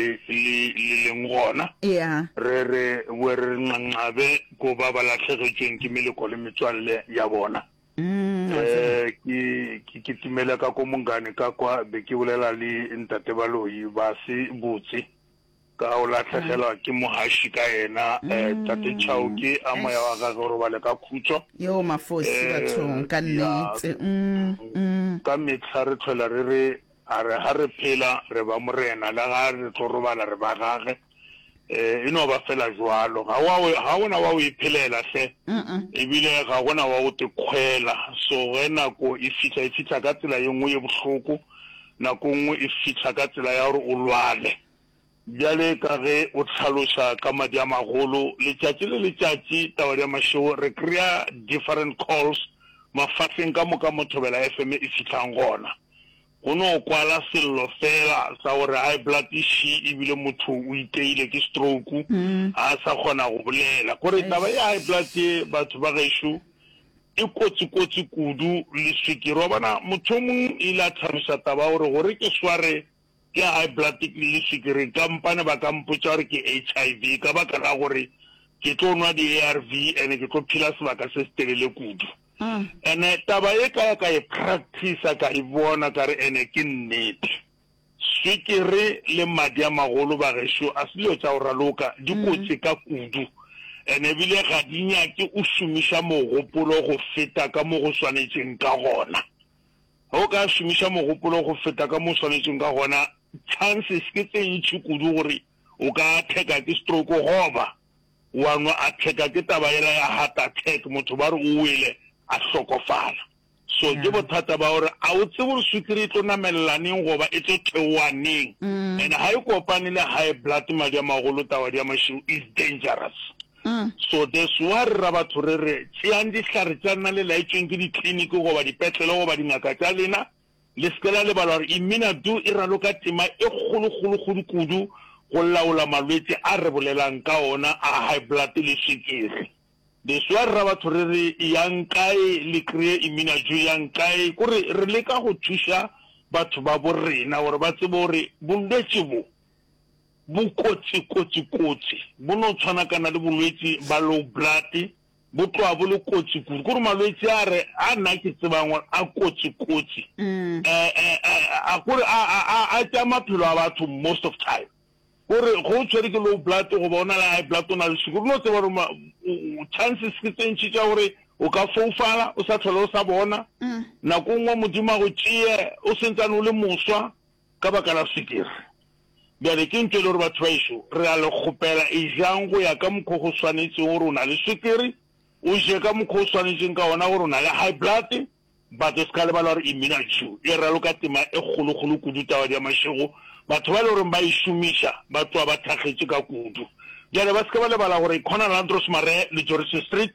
le, le, le leng gona. Ya. Re, re be re re nqanqabe ko ba ba lahlegetšweng ke meleko le metswalle ya bona. Mm, wa tseba. Eh, ke, ke kitimela ka ko Mongane ka kwa, be ke bolela le Ntate Baloyi, ba se botse ka go lahlegelwa ke mohaši ka yena. Eh, Tate Chauke, a moya wa gagwe o robale ka khutšo. Yo, mafosi Eh, bathong, ka ya. nnete. Mm, mm. Ka mehla re tlhola re re, A re, Ga re phela, re ba Morena, le ga re tlo robala, re ba Gage. E, e no ba feela bjalo. Ga wa, ga go na wa go e phelela, hle. Ebile ga go na wa go te kgwela. So ge nako e fihla, e fihla ka tsela ye nngwe ye bohloko, nako e nngwe e fihla ka tsela ya gore o lwale. Bjale ka ge o hlaloša ka madi a magolo, letšatši le letšatši, Tabadi ya Mašego, re kry-a different calls mafahling ka moka mo Thobela FM e fihlang gona. Go no kwala sello feela sa gore high blood e ši ebile motho o iteile ke stroke, ga a sa kgona go bolela. Gore taba ya high blood ye batho ba gešo e kotsi-kotsi kudu le swikiri. Wa bona, motho o mong e ile a thabiša taba ya gore gore ke sware, Ke high blood ke le sukiri kampane ba ka mpotša gore ke HIV ka baka la gore ke tlo nwa di-ARV ene ke tlo phila sebaka se se telele kudu. Ene taba e ka ya ka e practicer ka e bona ka re ene ke nnete. Sukiri le madi a magolo bagešo a se dilo tša go raloka, di kotsi ka kudu ene ebile ga di nyake o šomiša mogopolo go feta ka mo go swanetšeng ka gona. Ge o ka šomiša mogopolo go feta ka mo o swanetšego ka gona, chances ke tše ntši kudu gore o ka atheka ke stroke goba wa no atheka ke taba yela ya heart attack, motho ba re o wele a hlokofala. So ke bothata ba gore a o tsebe gore swikiri e tlo namelela neng goba e tlo theoa neng. And ga e kopane le high blood, madi a magolo, tawadi ya mašeu is dangerous. So this wa re ra batho re re, Tšeang dihlare tša lena le laetšweng ke dikliniki goba dipetlele goba dingaka tša lena. Le se ke la lebala gore Imina Do e raloka tema e kgolokgolokgodi kudu go laola malwetše a re bolelang ka ona a high blood le swikiri. This wa re ra batho re re, Eyang kae le kreye Imina Jo? Eyang kae? Kore re leka go thuša batho babo rena gore ba tsebe gore bolwetše bo Bokotsi, kotsi, kotsi bo no tshwanakana le bolwetsi ba low blood, bo tloga bo le kotsi kudu. Kore malwetsi a re a nna ke tsebang gore a kotsi, kotsi a kore a a a tšea maphelo a batho most of time. Kore ge o tshwere ke low blood goba o na le high blood o na le sukiri o no tseba gore chances ke tse ntši tša gore o ka foufala o sa tlhole o sa bona, nako e nngwe Modimo a go tšee o sentsane o le moswa. Ka baka la swikiri. Bjale, ke ntho e le gore, batho baešo, re a le kgopela, ejang go ya ka mokgwa o go swanetšego gore o na le swikiri, o je ka mokgwa o swanetšeng ka wona gore o na le high blood, but o se ka lebala gore Immunacu e raloka tema e kgolokgolo kudu tabadi ya mašego, batho ba e le goreng ba e šomiša ba tloga ba thakgetše ka kudu. Bjale, ba se ke ba lebala gore Conal Andros Maree le Joris Street,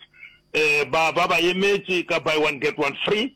um ba, ba ba emetše ka buy one get one free.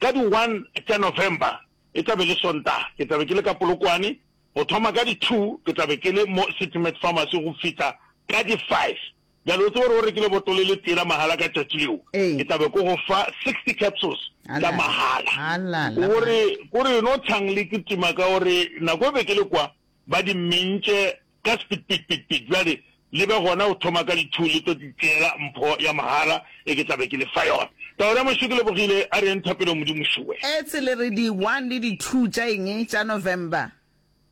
Ka di one tša November, e tla be e le Sontaga, ke tla be ke le ka Polokwane. Go thoma ka di two, ke tla be ke le mo City Med Pharmacy go fihla ka di five. Bjale o tsebe gore o rekile botolo e le tee la mahala ka tšatši leo, Ee. ke tla be ko go fa sixty capsules tša Halala. mahala. Halala, Ko re, ko re no tshang le kitima ka gore nako e be ke le kwa, ba di mmentše Ka sepitpitpitpit, bjale le be gona go thoma ka di-two, le tlo titšeela mpho ya mogala e ke tla be ke le fa yona. Taolo ya mašo ke lebogile, a re yeng thapelong Modimo Sure. Ets le re di-one le di-two tša eng? Tša November?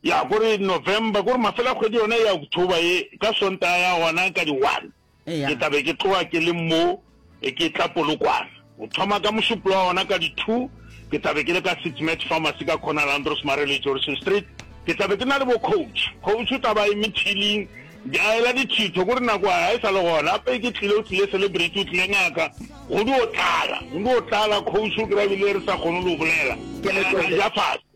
Ya, ko re November, ko re mafelo a kgwedi yona ya October ye, ka Sontaga ya gona ka di-one. Ke tla be ke tloga ke le mo e ke tla Polokwane. Go thoma ka mošuplo wa ona ka di two, ke tla be ke le ka Sitmet Pharmacy ka corner la Andros Mare le Johnson Street. Ke tla be ke na le bo Coach. Coach o tla ba a eme thiling, a ela dithitho kore nako ya hae e sa le gona. Gape e ke tlile, o tlile celebrity, o tlile ngaka. Go dio tlala, go dio tlala, Coach o kry-a ebile re sa kgone le go bolela, re ja fase.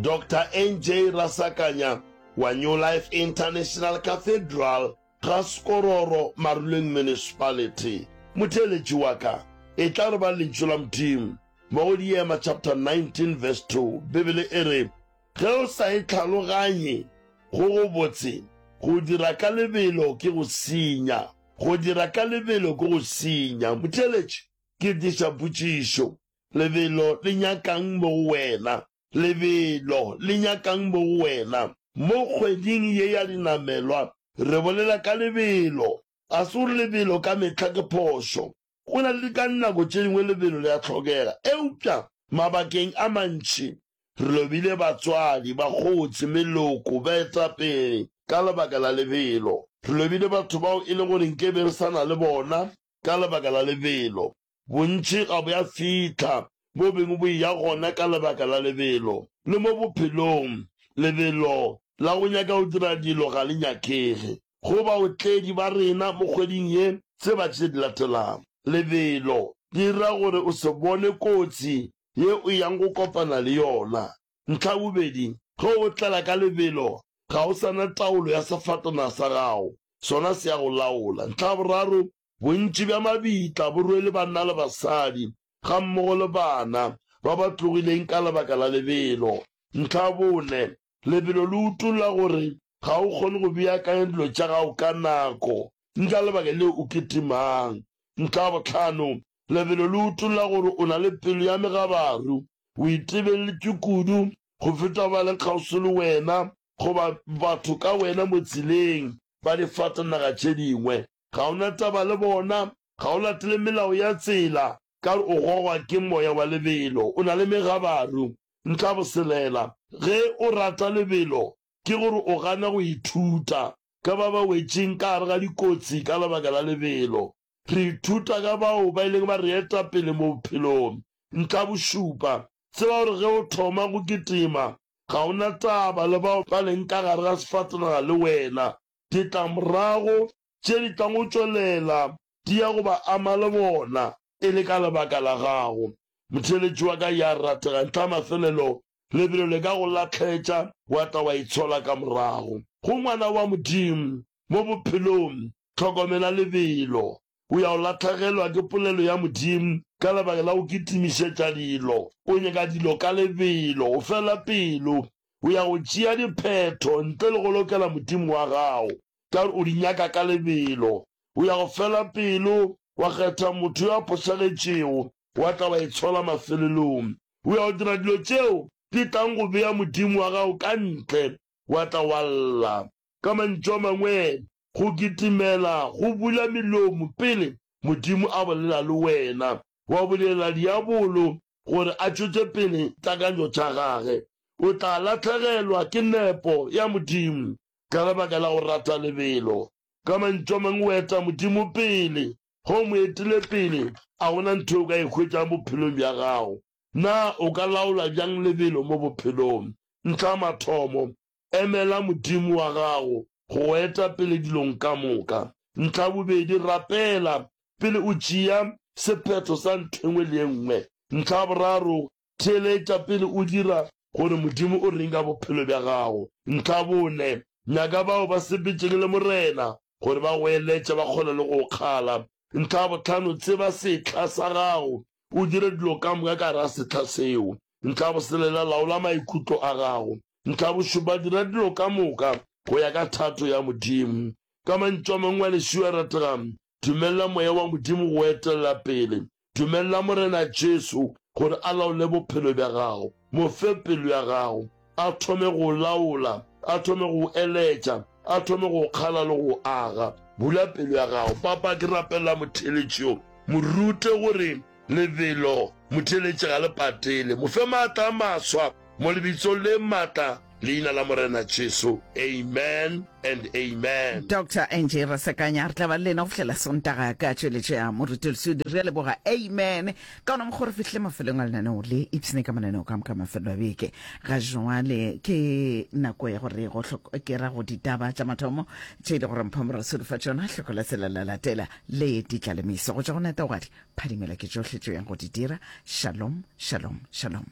Doctor NJ Rasakanya wa New Life International Cathedral ga Sekororo Maruleng Municipality. Motheeletši wa ka e tla re ba Lentšu la Modimo mo go Diema chapter 19 verse 2. Bibele e re, Ge o sa e tlhaloganye, go gobotse, go dira ka lebelo ke go senya. Go dira ka lebelo ke go senya. Motheeletši, ke diša potšišo. Lebelo le nyaka'ng mo go wena? Lebelo le nyaka'ng mo go wena? Mo kgweding ye ya dinamelwa, re bolela ka lebelo. Ga se gore lebelo ka mehla ke phošo. Go na le ka nako tše dingwe lebelo le a hlokega. Eupša mabakeng a mantši, re lobile batswadi, bakgotsi, meloko, baetapele ka lebaka la lebelo. Re lobile batho bao e le gore nke be re sa na le bona ka lebaka la lebelo. Bontši ga bo a fihla, bo bengwe bo eya gona ka lebaka la lebelo. Le mo bophelong, lebelo la go nyaka go dira dilo ga le nyakege. Go baotledi ba rena mo kgweding ye, tseba tše di latelago. Lebelo le dira gore o se bone kotsi ye o yang go kopana le yona. Ntlha ya bobedi, ge o tlela ka lebelo, ga o sa na taolo ya sefatanaga sa gago, sona se a go laola. Ntlha ya boraro, Bontši bja mabitla, borwele, banna le basadi, gammogo le bana ba ba tlogileng ka lebaka la lebelo. Ntlha ya bone, lebelo le utolla gore ga o kgone go beakanya dilo tša gago ka nako, mme ka lebaka leo o kitimang. Ntlha ya bohlano, lebelo le utolla gore o na le pelo ya megabaru, o itebelletšwe kudu go feta ba leng kgauswi le wena goba batho ka wena mo tseleng ba difatanaga tše dingwe. Ga o na taba le bona. Ga o latele melao ya tsela, ka gore o gogwa ke moya wa lebelo. O na le megabaru. Ntlaboselela, Ge o rata lebelo, ke gore o gana go ithuta ka ba ba wetšeng ka gare ga dikotsi ka lebaka la lebelo. Re ithuta ka bao ba ileng ba re eta pele mo bophelong. Ntlabošupa, Tseba gore ge o thoma go kitima, ga o na taba le bao ba leng ka gare ga sefatanaga le wena. ditlamorago tše di tlago tšwelela di ya go ba ama le bona. E le ka lebaka la gago, motheeletši wa ka ya rategang, ntlha ya mafelelo lebelo le ka go lahletša, wa tla wa itshola ka morago. Go ngwana wa Modimo mo bophelong, hlokomela lebelo. O ya o lahlegelwa ke polelo ya Modimo ka lebaka la go kitimišetša dilo. O nyaka dilo ka lebelo, o fela pelo. O ya go tšea diphetho ntle le go lokela Modimo wa gago, ka gore o di nyaka ka lebelo. O ya go fela pelo, wa kgetha motho yo a phošagetšego, wa tla wa e tshola mafelelong. O ya go dira dilo tšeo di tlang go bea Modimo wa gago ka ntle, wa tla wa lla. Ka mantšu a mangwe, go kitimela go bula melomo pele Modimo a bolela le wena. Wa bulela diabolo gore a tšwetše pele takanyo tša gage. O tla lahlegelwa ke nepo ya Modimo ka lebaka la go rata lebelo. Ka mantšu a mangwe, o eta Modimo pele. Ge o mo etile pele, a go na ntho yeo o ka e hwetšang bophelong bja gago. Na o ka laola bjang lebelo mo bophelong? Ntlha ya mathomo, Emela Modimo wa gago go go eta pele dilong ka moka. Ntlhabobedi, rapela pele o tšea sephetho sa ntho e nngwe le e nngwe. Ntlhaboraro, theeletša pele o dira gore Modimo o reng ka bophelo bja gago. Ntlhabone, nyaka bao ba sepetšeng le Morena gore ba go eletše, ba kgone le go o kgala Ntlha ya botlhano, tseba setlha sa gago, o dire dilo ka moka ka ra setlha seo. Ntlha ya boselela, laola maikutlo a gago. Ntlha ya bošupa, dira dilo ka moka go ya ka thato ya Modimo. Ka mantšu a mangwe a lešio a rategang, dumelela moya wa Modimo go etelela pele. Dumelela Morena Jesu gore a laole bophelo bja gago. Mo fe pelo ya gago. A thome go laola, a thome go eletša, a thome go kgala le go aga. Bula pelo ya gago. Papa, ke rapelela motheeletši yo. Mo rute gore lebelo motheeletši ga le patele. Mo fe maatla a maswa, mo lebitsong le maatla, Leina la Morena Jesu. Amen and amen. Doctor Angie Rasekanya, re tla ba le lena go fihlela Sontaga ka tšweletšo ya Moretolosudu. Re a leboga. Amen. ka ona mokgwa re fihle mafelong a lenaneo le ipshine ka mananeo ka moka mafelelo a beke ga jwale ke nako ya gore go ke ra go ditaba tša mathomo tše e le gore mphamora selo fa tšona hlokola tsela la latela le di tla lemiso go tša go neta ogadi phadimela ke tšohle tšo yang go di dira shalom shalom shalom